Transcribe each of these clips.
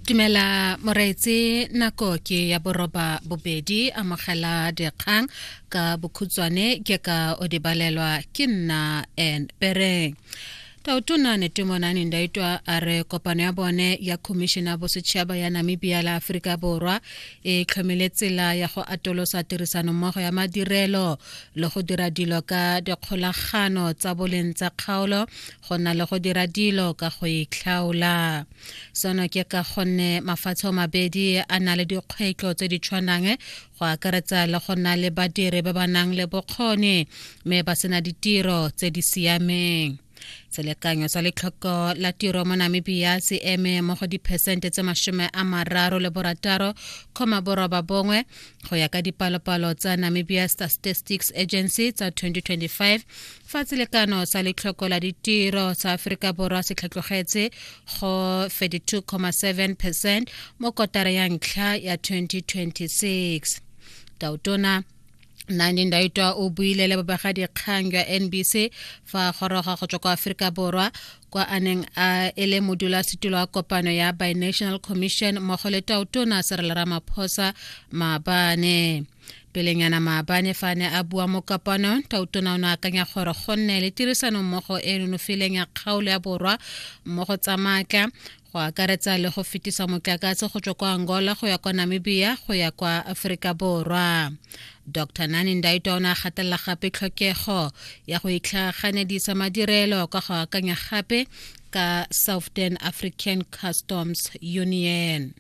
Tumela moreetse nako ke ya boroba bobedi amogela dikgang ka bokhutswane ke ka o dibalelwa ke nna and pereng tautona netemonane ndaitwa a re kopano ya bone ya khomišene ya bosetšhaba ya namibia le aforika borwa e tlhomile tsela ya go atolosa tirisanommogo ya madirelo le go dira dilo ka dikgolagano tsa boleng tsa kgaolo go na le go dira dilo ka go itlhaola seno ke ka gonne mafatshe o mabedi a na le dikgwetlho tse di tshwanang go akaretsa le go na le badiri ba ba nang le bokgoni mme ba sena ditiro tse di siameng selekanyo sa letlhoko la tiro mo namibia se eme mo go diphesente tse masome a mararo le borataro kgoma boroba bongwe go ya ka dipalopalo tsa namibia statistics agency tsa 2025 fa selekano sa letlhoko la ditiro sa aforika borwa se tlhatlogetse go 32.7 percent mo kotara ya ntlha ya 2026 tautona nandin daitwa o buile le babegadikgang jwa nbc fa goroga go tswa kwa aforika borwa kwa a neng a e le modulasetulo wa kopano ya binational commission mmogo le tautona serela ramaphosa maabane pelenyana maabane fa a ne a bua mo kapanong tautona o ne akanya gore go nne le tirisanommogo e e nonofileng ya kgaolo ya borwa mo go tsa maatla go akaretsa le go fetisa motlakase go tswa kwa angola go ya kwa namibia go ya kwa aforika borwa dr nani ndaitwa o ne a gatelela gape tlhokego ya go itlhaganedisa madirelo ka go akanya gape ka southern african customs union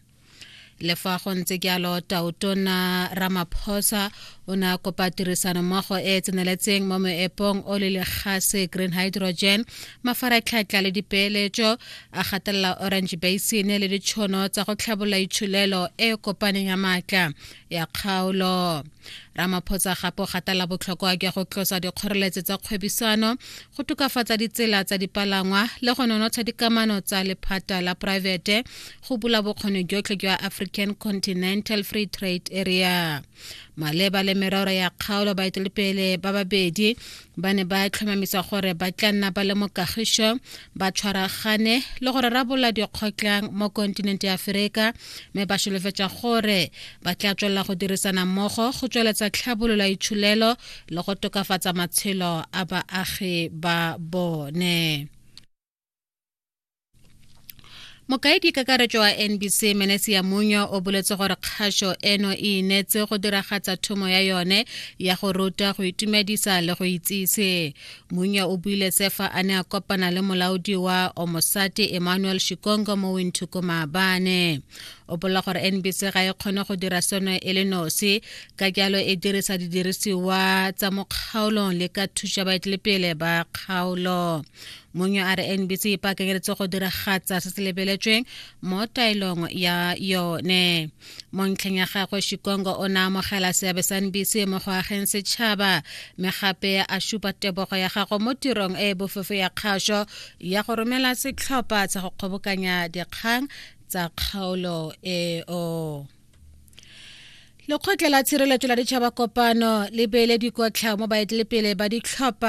le fa go ntse jalo tautona ramaphosa o ne a kopa tirisanommogo e e tseneletseng mo moepong o le legase green hydrogen mafaratlhatlha le dipeeletso a gatelela orange basin le ditšhono tsa go tlhabolola itshulelo e e kopaneng ya maatla ya kgaolo ramaphosa gape o gatela botlhokwa jwa go tlosa dikgoreletso tsa kgwebisano go tokafatsa ditsela tsa dipalangwa le go nonotsha dikamano tsa lephata la poraefete go bula bokgoni jotlhe jwa african continental free trade area maleba le merero ya kgaolo baetelepele ba babedi ba ne ba tlhomamisa gore ba tla nna ba le mo kagišo ba tshwaragane le gore rabola dikgotlang mo kontinente ya aferika mme ba solofetsa gore ba tla tswelela go dirisana mmogo go tsweletsa tlhabololo ya itshulelo le go tokafatsa matshelo a baagi ba bone mokaedi kakaretso wa nbc menesi ya munya o boletse gore kgaso eno e inetse go diragatsa thomo ya yone ya go ruta go itumedisa le go itsise munya o buile sefa a ne a kopana le molaodi wa omosate emmanuel shikongo mo winthuko maabane o bolela gore nbc ga e kgone go dira seno e le nosi ka jalo e dirisa didirisiwa tsa mo kgaolong le ka thuša baetelepele ba kgaolo mongwe a re nbc e pakenyeletse go diragatsa se se lebeletsweng mo taelong ya yone mo ntlheng ya gagwe shikongo o ne amogela seabe sa nbc mo go ageng setšhaba mme gape a supa tebogo ya gago mo tirong e e bofefo ya kgaso ya go romela setlhopha sa go kgobokanya dikgang tsa kgaolo eo lekgotla la tshireletso la ditšhaba kopano le beele dikotlhao mo baetelepele ba ditlhopha